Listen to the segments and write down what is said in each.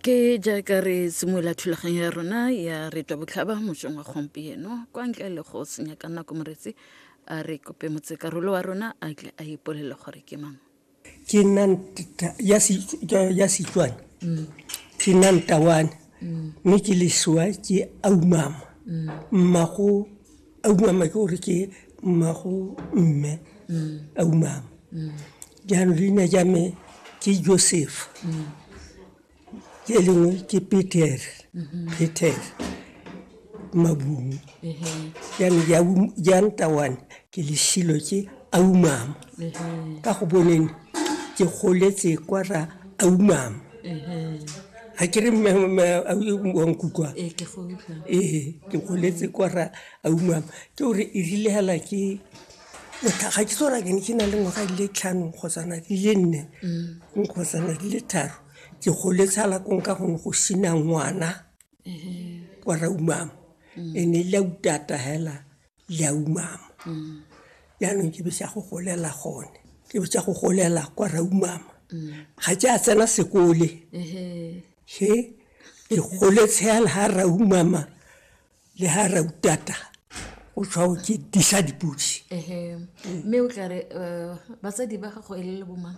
ke jaaka re simolola thulaganyo ya rona ya re twa botlhaba mosong wa gompieno kwa ntle le go senya ka nako moretsi a re kope motsekarolo wa rona a tle a ipolele gore ke mang ke nna ya setswana ke nna ntawane mme ke lesoa ke aumama mmago a umama ke gore ke mmago mme a umama jaanong leina ja me ke joseph ke lengwe ke peter peter mabung jaanong ja um- ja ntawane ke lesilo ke a umama ka go boneng ke goletse kwa ra a umama ga ke re wa nkutlwa ee ke go utlwa ee ke goletse kwa ra a umama ke gore e rile hela ke ga ke tsora ke ne ke na le ngwaga di le tlhano kgosana di le nne mm. nkgosana di le tharo ke goletse hala kong ka gone go sina ngwana kwa ra umama mm. e ne e le utata hela le a umama jaanong ke be sa go golela gone ke be sa go golela kwa ra umama ga ke a tsena sekole he ke gole tshela ga ra umama le ga ra utata o tshwao ke disa dipodi mme o tla re um batsadi ba gago e le le bomang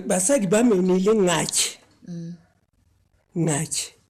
basadi ba mene e le ngake ngake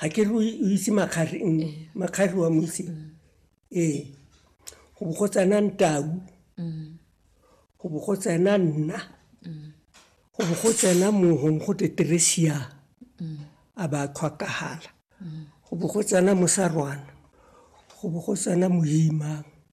ga ke re o itse makgari mm, eh. makgari wa mo itse mm. ee go bo go tsena ntau mm. go bo go tsena nna go bo go tsena mohong go teteresia a ba tlhwakagala go bo go tsena mosarwana go bo go tsena moimang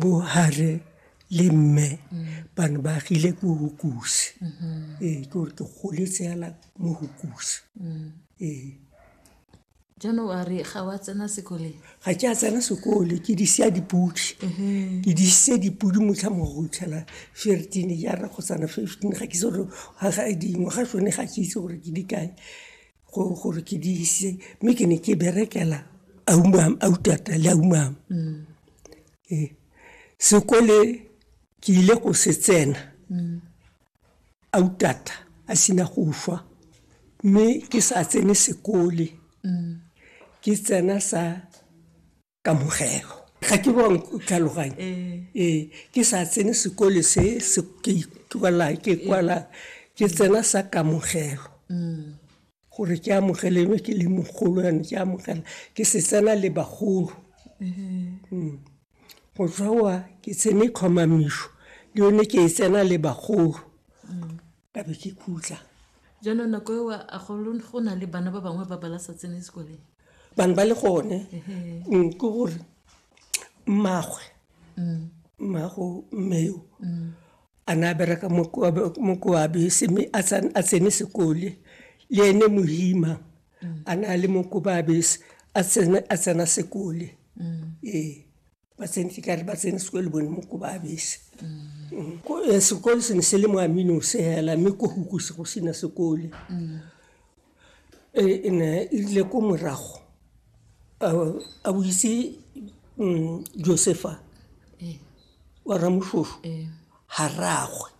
bo hare le mme ba ne ba agile ko hokuse ee ke gore ke goletse yala mo hokuse ee jaanong a re ga wa tsena sekoleng ga ke a tsena sekole ke di sia dipodi ke di ise dipodi motlha mo go itlhela fifteen jana kgotsana fifteen ga ke itse gore dingwaga tsone ga ke itse gore ke di kae gore ke di ise mme ke ne ke berekela aumam autata le aumam mm. ee sekole ke ile go se tsena mm. autata a sena go fa mme ke sa tsene sekole mm. ke tsena sa kamogelo ga ke bang tlhaloganye ee ke sa tsene sekole se ke ikwala ke kwala ke tsena sa kamogelo gore ke amogelelwe ke le mogolo yane ke amogela ke se tsena le bagolo go tswa wa ke tsene tlhomamišo le yone ke e tsena le bagolo ka be ke khutla jaanong nako eo a go na le bana ba bangwe ba bala sa tsene sekoleng bangwe ba le gone mm, ke gore mmagwe mm. mmago mmeo mm. a ne a bereka mokoabe seme a tsene sekole le ene mohima a ne a le mokobaabese a tsena sekole ee ba tsentse ka re ba tsene sekolo bone mo ko ba abese Ko- eh, sekolo se ne se le mo aminose hela mme ko hukuse go sena sekole Eh, e ne e rile ko morago a- a boitse mm, josefa wa ramoshosho ga ragwe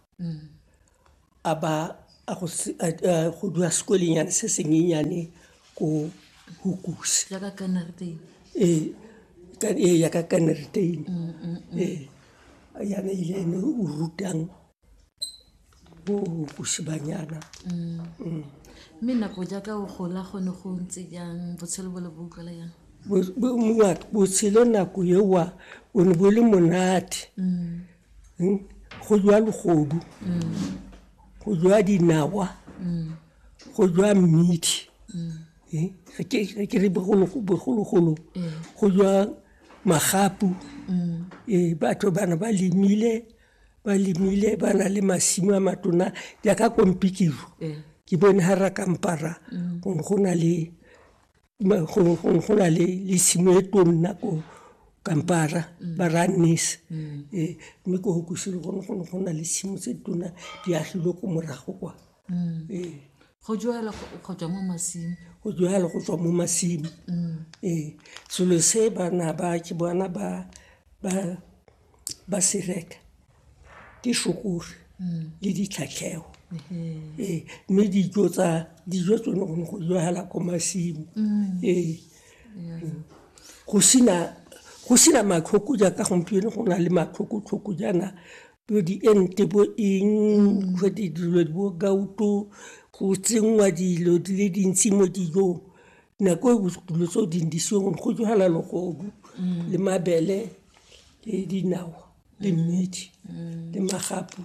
a ba a go se- a- a go dula sekwelengyane se senyenyane ko hukuse jaaka kanarteng ee ka- ee, ya ka kaneritein ee yana ile ene o rutang bo hukuse banyana mme nako jaaka o gola gone go ntse jang botshelo bo le bo utlwala jang Bo- bo- mongwa- botshelo nako ewa o ne bo le monate hmm? go jwa legodu go jwa dinawa go jwa mmidi eh, ga ke re bogologolo go jwa magapu ee batho bana ba lemile ba lemile ba na le masimo a matona jaaka kompikiro ke bone ga ra kampara go na le go na le le simo e tonna ko kampara mm. ba ra nese mm. eh, mme ko go kusile gone gone go na le simo tse tona di agilwe ko morago kwa mm. eh. go joela go tswa mo masimo go joela go tswa mo masimo ee selo se bana ba ke bona ba ba ba se reka ke shokore mm. le ditlhatlhego mm-hmm. ee mme dijo tsa dijo tsone go ne go jwala ko masimo mm. ee mm. go sena go sena matlhoko jaaka gompieno go na le matlhokotlhoko jaana bo diente bo eng go dilo bo gauto go tsenngwa dilo di le dintsi mo dijong nako e dilo tse o di ndisiweng go jala logobu le mabele le dinawa le mmidi le magapu